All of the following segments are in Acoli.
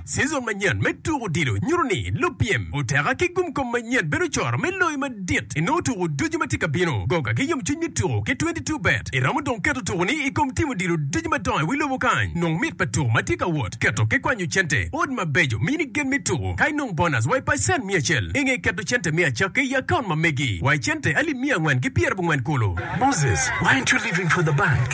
Cizon manyen me tuko odilo nyuto ni lupyem oteka ki gumkom manyen bedo coro me loyo madit i nongo tuko ducu ma tye ka bino. Goga ki yomcwiny me tuko ki Twenty Two Bet iromo dong keto tukoni i kom tim odilo ducu madongo i wi lobo kany. Nong mit pa tuko ma tye ka wot, keto ki kwanyo cente, odd mabeco, mini gen me tuko, ka inong bonas wa i pacen miya acel. I nge keto cente me acakki i akaunt ma megi wa i cente alip miya angwen ki pyerabongwen kulu. Moses, Why aren't you living for the bank?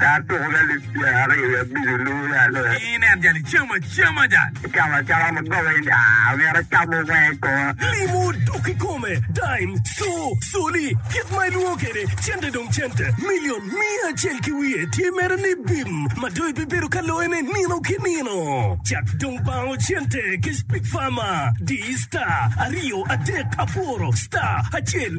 Tar tuku lalib tyen aryo ya bico luu ya loo. Ii nen jali cam acama jal. Icamo acama ma goba in aa omyero acamo wenge kong. Limo dok kikome, dime, co, coli, kit ma ilwongo kede cente dong cente, million, miya acel ki wiye tye mere ni bim ma dong ibibedo ka loye ne nino ki nino. Cak dong bango cente ki speak farmer, di star, aryo, adek, aboro, star, acel,